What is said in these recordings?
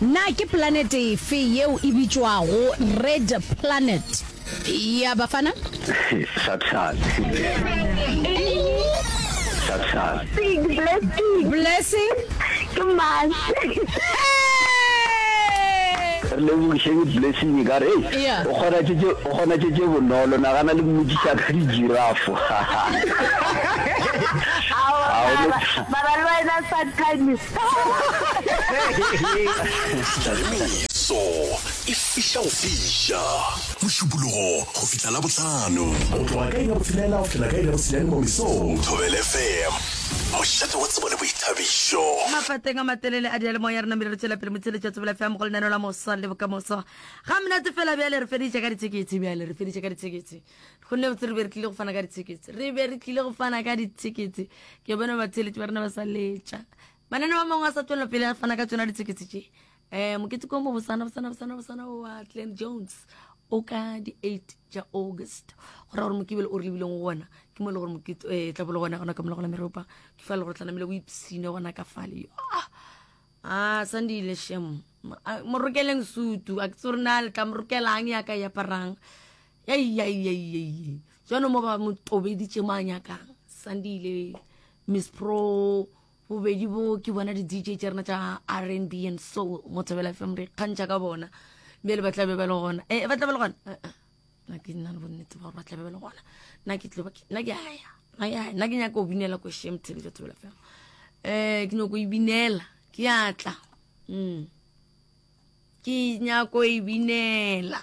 Na ke planete efe yeo e bitšwago Red Planet? Ya, bafana? Blessing? Hee! Re lebogišeng Blessing e ka re, Hei, Ea. o kgona tše tše- o kgona tše tše bonolo, nagana le mmotšiša ka di-giraffe. Ao, Ga o no- ba ba lwana sa time Tlaleletso e fihla go fiša Mošupologo go fihla Labohlano. Go tloga ka iri ya botshelela go fihla ka iri ya bosenyane mo mesong. Thobela FM, mošate wa tsebo le boithabišo. Mapateng a matelele a diyalemoya re namile re tšwela pele motsheletšo wa tsebela fm go lenaneo la moswa le bokamoso ga mnate fela bjale re feditše ka dithekethe bjale re feditše ka dithekethe gonne botse re be re tlile go fana ka di-tickets re be re tlile go fana ka di-tickets ke bona batheletši ba rena ba sa letša manane ba mangwe a sa tswelela pele a fana ka tsona di-tickets tše um mokete ko mo bosana bosana bosana bosana wa clan jones o ka di-eight tša august go ra gore mokebele o re lebileng go gona ke mo e le gore mokete um eh, tlabolo gona gona ka mola gona meropa ke fa le gore tlanamele o ipsine gona ka fale yo a ah, sandile shem morokeleng sutu a ke tse gore na le tla morokelang ya ka yaparang yaiyaiyaiyaiyai jano mo ba mo tobeditše mo a nyakang sandile miss pro bobedi bo ke bona di-dj tša rena tša r n b and soul mo thabela fm re kgantšha ka bona bjale ba tlabe ba le gona e ba tlabe le gona eh, eh. na ke nna le bonnete ba gore ba tlabe ba le gona na ke tloba na ke aya na ke aya na ke nyaka go binela ko shem tshebetso thabela fm um ke nyako e binela ke atla um mm. ke nyako e binela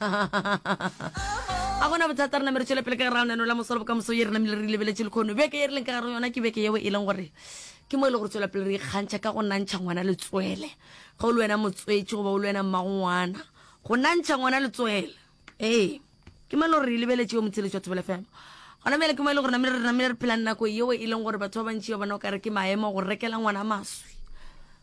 a gona bothata re namere tšwele pele ka gare ga la mosolo bokamoso ye re namile re lebeletse lekgono beke ye re leng ka gare yona ke beke yeo e leng gore ke mo e le gore tswela pele re ikgantšha ka go nantšha ngwana letswele ga o le wena motswetši goba o le wena mmangwana go nantšha ngwana letswele ee ke mo e le gore re lebeletse yo motsheletši wa thobela fela gona mele ke mo e le gore namile re namile re phelang nako yeo e leng gore batho ba bantši ba bona o kare ke maemo go rekela ngwana maswi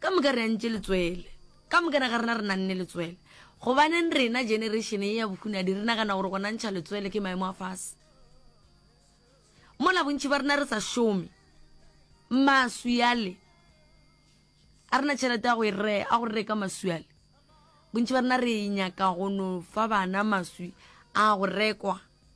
Ka moka re antše letswele. Ka moka ga rena re nanne letswele. Gobaneng rena, generation ye ya bohunadi, re nagana gore go nantšha letswele ke maemo a fase? Mola bontši ba rena re sa šome, maswi ale, a rena tšhelete ya go e re, a go reka maswi ale. Bontši ba rena re nyaka go no fa bana maswi a go rekwa.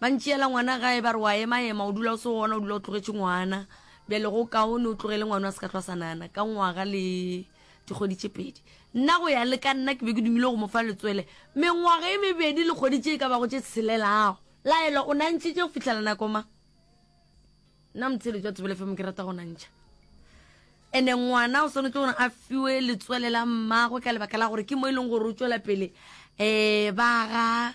Ba ntšeela ngwana gae, ba re, O a ema-ema, o dula o se gona, o dula o tlogetše ngwana. Bjale go kaone o tlogele ngwano a se ka hlwa a sa nagana. Ka ngwaga le dikgwedi tše pedi. Nna go ya le ka nna ke be ke dumile go mo fa letswele. Mengwaga e mebedi le kgwedi tše e ka bago tše tshelelago. Laelwa, O nantšhitše go fihlela nako mang? Nna motheeletši wa Thobela FM ke rata go nantšha. And-e ngwana o swanetše gore a fiwe letswele la mmagwe ka lebaka la gore ke mo e leng gore o tšwela pele um ba aga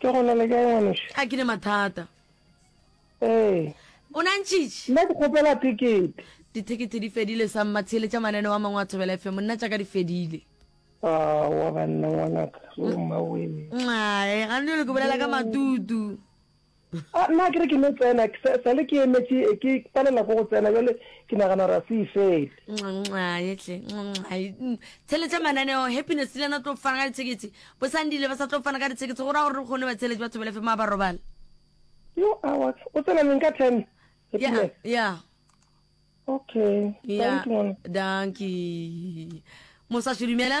Ke gona le kae ngwanoši? A ke ne mathata. Ee. O na ntšitš? Nna ke kgopela thekete. Dithekete di fedile sa mma theeletša mananeo a mangwe a Thobela FM. Nna tša ka di fedile. Aowa banna ngwanaka. Wo mma wee. Nxae, gane jwale ke bolela ka matutu. A nna ke re ke no tsena, sa, sa le ke emetše, ke palela ko go tsena, bjale ke nagana gore a se e fele. Nxaetle, nxae, mm, tsheletša mananeo, Happiness le yena o tlo fana ka dithekethe, Bosandile ba sa tlo fana ka dithekethe, go ra gore re kgone ba tsheletše batho belefe maa ba robala. Yo, awa, o tsena neng ka ten? Ya, Happiness. ya, Okay, ya, thank you, ngwana. dankie. Mosaswi dumela.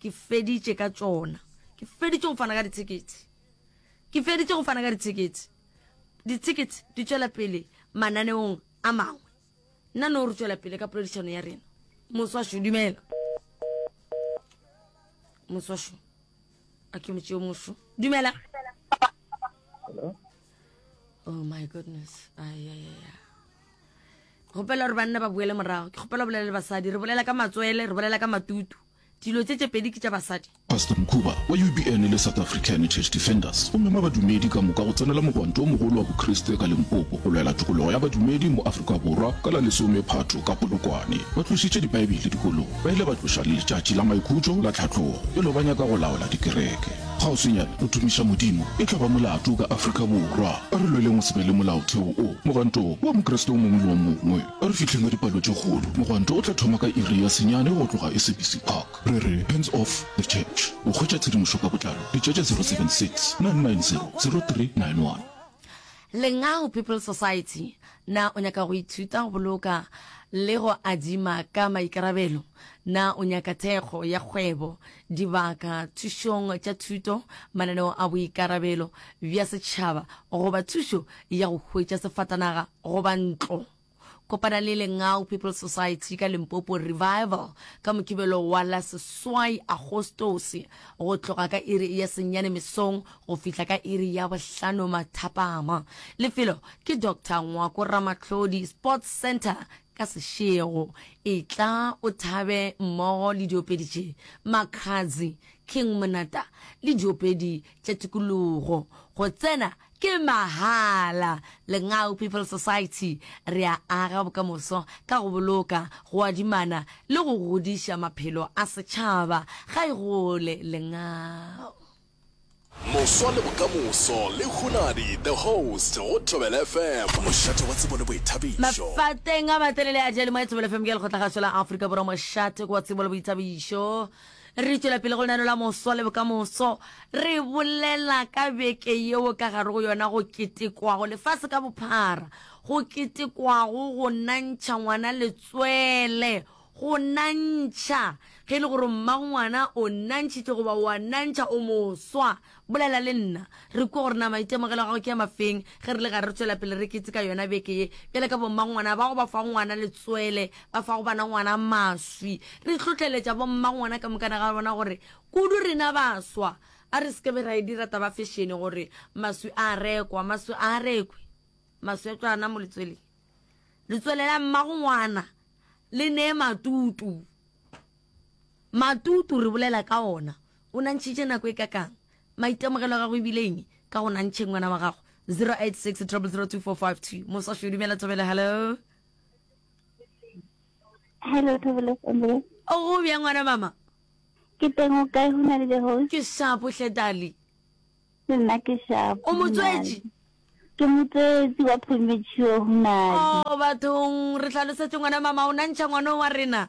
Ke feditše ka tšona. Ke feditše go fana ka dithekete. Ke feditše go fana ka dithekete. Dithekete di tšwela pele mananeong a mangwe. Nna no re tšwela pele ka poledišano ya rena. Moswasho, dumela. Moswasho. A ke motšeo mosho. Dumela. Hello? Oh my goodness. Ay, ay, ay, ay. Gopela gore banna ba boele morago. Ke gopela bolela le basadi. Re bolela ka matswele, re bolela ka matutu. Dilo tše tše pedi ke tša basadi. Pastor Mkhuba wa UBN le South African Church Defenders o mema badumedi ka moka go tsenela mogwanto o mogolo wa Bokriste ka Limpopo go lwela tokologo ya badumedi mo Afrika Borwa ka la lesome Phatho ka Polokwane. Ba tlošitše Dibaebele dikolong, ba ile ba tloša le letšatši la maikhutšo la tlhatlogo e lo ba nyaka go laola dikereke. Kgauswinyane go tumiša Modimo e tla ba molato ka Afrika Borwa. A re lweleng go se be le molaotheo o mogwanto wa Mokriste o mongwe le o mongwe. A re fihleng ka dipalo tše kgolo, mogwanto o tla thoma ka iri ya senyane go tloga SABC Park. Re re, Hands off the church. Go hwetša tshedimošo ka botlalo, bitša tša 076 990 0391. Lengau People's Society, Na o nyaka go ithuta go boloka le go adima ka maikarabelo? Na o nyaka thekgo ya kgwebo, dibaka, thušong tša thuto, mananeo a boikarabelo bja setšhaba goba thušo ya go hwetša sefatanaga? Goba ntlo. Kopana le Lengau People's Society ka Limpopo Revival ka Mokibelo wa la seswai Agostose go tloga ka iri ya senyane mesong go fihla ka iri ya bohlano mathapama. Lefelo ke Doctor Ngwako Ramatlhodi Sports Centre ka sešego. Etla o thabe mmogo le diopedi tše, Makhadzi, King Monata le diopedi tša tikologo. Go tsena Ke mahala. Lengau People Society re a aga bokamoso ka go boloka, go adimana le go godiša maphelo a setšhaba. Ga e gole Lengau. Moswa le bokamoso le Hunadi the host go Thobela FM. Mošate wa tsebo le boithabišo. Mafateng a matelele a Jelemae Thobela FM ke lekgotlakgašo la Afrika Borwa Mošate ke wa tsebo le boithabišo. Re tšwela pele go lenaneo la Moswa le Bokamoso. Re bolela ka beke yeo ka gare go yona go ketekwago lefase ka bophara, go ketekwago go nantšha ngwana letswele, go nantšha ge e le gore mmagongwana o nantšhitšwe goba o a nantšha, o moswa, Bolela le nna. Re kwe gore na maitemogelo a gago ke a mafeng ge re le gare re tšwela pele re keteka yona beke ye, bjale ka bommangwana bago ba fago ngwana letswele, ba fago bana ngwana maswi. Re hlotleletša bommangwana ka mokana ga bona gore kudu rena baswa a re se ke be ra e dira taba ya fešene gore maswi a rekwa. Maswi a a rekwe. Maswi a tšwa ana mo letsweleng. Letswele la mmago ngwana le nee matutu. Matutu re bolela ka ona. O nantšhitše nako e kakang? Maitemogelo a gago e bile eng ka go nantšheng ngwana wa gago? 0860002452 Moswa Šwi, dumela Thobela, hello. Hello Thobela Sandile. O go bjang ngwana mama? Ke teng o kae go na le Jehosh? Ke shapo hle Dali. Le nna ke shapo. O motswetši? Ke motswetši wa premature go na le. Oh bathong re hlalosetse ngwana mama o nantšha ngwana wa rena.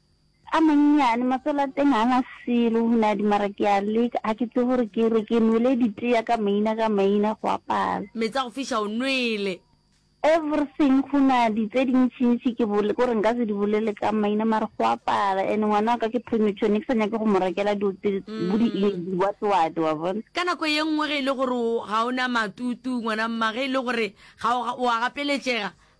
A mannyane, matswele a teng ga a na selo, o ne a di mara ke a leka, ga ke tsebe gore ke re ke nwele ditea ka maina ka maina go a pala. Meetse a go fiša o nwele. Everything, go na di tse dintšintši ke bole gore nka se di bolele ka maina mare go a pala and ngwana wa ka ke premature ne ke sa nyake go mo rekela dilo tse bo di what what wa bona. Ka nako ye nngwe ge e le gore ga o na matutu ngwana mma ge e le gore ga o a gapeletšega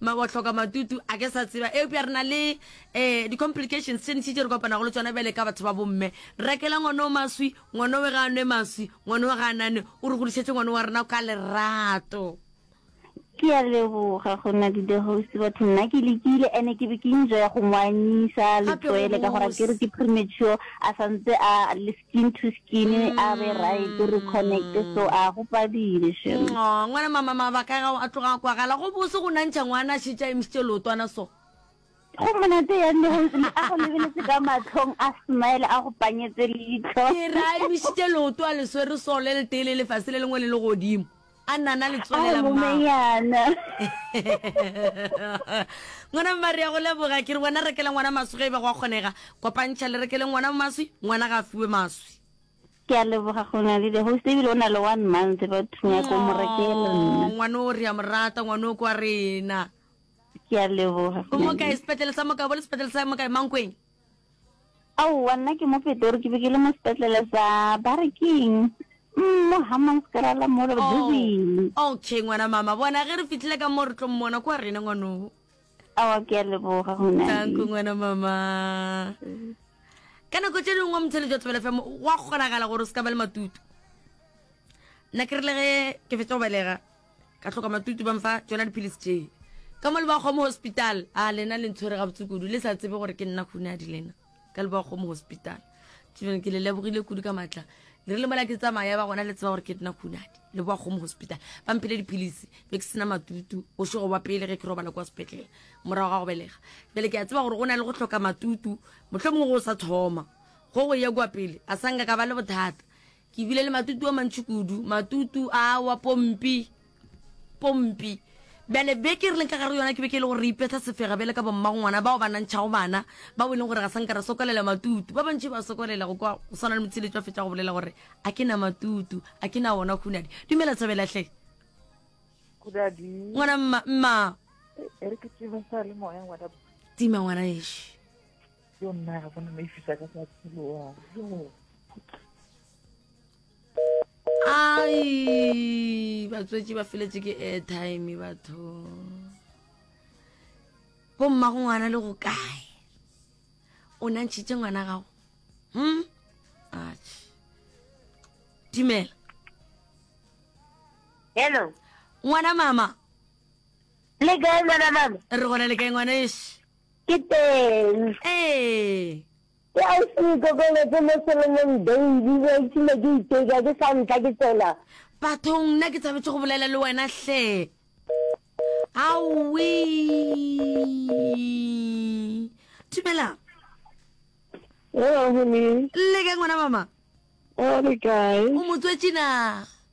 Ma wa hloka matutu a ke sa tseba eupša re na le eh di complications tše ntši tše re kopanago le tsona bjale ka batho ba bomme. Rekela ngwana o maswi, ngwana we ga a nwe maswi, ngwana we ga a nane, o re godišetše ngwana wa rena ka lerato. Ke a leboga go na di the host batho nna ke lekile ene ke be ke enjoya go mo anyisa le Gape go tloele ka gore bose. akere ke premature a santse a le Skin to skin a be right re connect so a go padile shem. Ngo, ngwana mama mabaka a gago a tloga a kwagala go bose go nantšha ngwana a šetša emšitše leotwana so. Go monate ya nne go ntse a go lebeletse ka matlhong a smile a go panyetse leitlo. Ke re a emišitše leoto a le swere so le letee le lefase le lengwe le legodimo. a nna na letswalela mmayana ngwana mmare ya go leboga ke re wena rekele ngwana maswi ga e ba go a kgonega kopantšha le rekele ngwana maswi ngwana ga a fiwe maswi ke a leboga go na le the host ebile o na le one month ba thunya ko mo rekele nna ngwana o re ya morata ngwana o kwa rena ke a leboga o mo kae sepetlele sa mokae bo le sepetlele sa mokae mankweng Aowa, nna ke mo Petori, ke be ke le mo sepetlele sa ba re keng mm, mo Hammanskraal mo re Oh, busy. okay ngwana mama bona ge re fitlhile ka mo re tlo mmona kwa rena ngwanogo Aowa, ke a leboga go na tanko ngwana mama ka nako tše dingwe wa motshele jwa tlebele fm wa kgonagala gore o se ka ba le matutu nna ke rile ge ke fetsa go belega Ka hloka matutu ba mfa tšona dipilisi tše. Ka mo Lebawakgomo Hospital. A lena le ntshwere gabotse kudu, le sa tsebe gore ke nna Hunadi lena. Ka Lebawakgomo Hospital. Children, ke le lebogile kudu ka matla. Le rile mola ke tsamaya ba gona le tseba gore ke nna Hunadi. Lebawakgomo Hospital. Ba mphile dipilisi, be ke sena matutu, bošego ba pele ge ke robala kwa sepetlele, morago ga go belega. Bjale ke a tseba gore go na le go hloka matutu, mohlomongwe go sa thoma go go ya kwa pele, a sa nka ka ba le bothata. Ke bile le matutu a mantši kudu, matutu a wa pompi, pompi. Bjale beke re leng ka gare yona ke beke e le gore re ipetha sefega bjale ka bommagongwana bao ba nantšhago bana, bao e leng gore ga sa nka ra sokolela matutu. Ba bantši ba sokolela go kwa go swana le Motšheletšo a fetša go bolela gore, A ke na matutu, a ke na wona Khunadi. Dumela Thabela hle. Khunadi. Ngwana mma, mma. E re ke tima sa le moya ngwana. Tima ngwana ešo. yo nna ga bona maifisa ka sa tsheloa ai batswetši ba feletse ke airtime batho bo mma go ngwana le go kae o nantšhitše ngwana gago hm dumela hello ngwana mama le kae ngwana mama re gona le kae ngwana ese Ke teng. Ee. Ke a se ikokobetse mo selomong baby, ke itshile ke iteka ke sa ntla ke tsena. Bathong nna ke tshabetse go bolela le wena hle. Aowi. Thibela. Hello honey. Lle kae ngwana mama? Re kae? O motswetši na?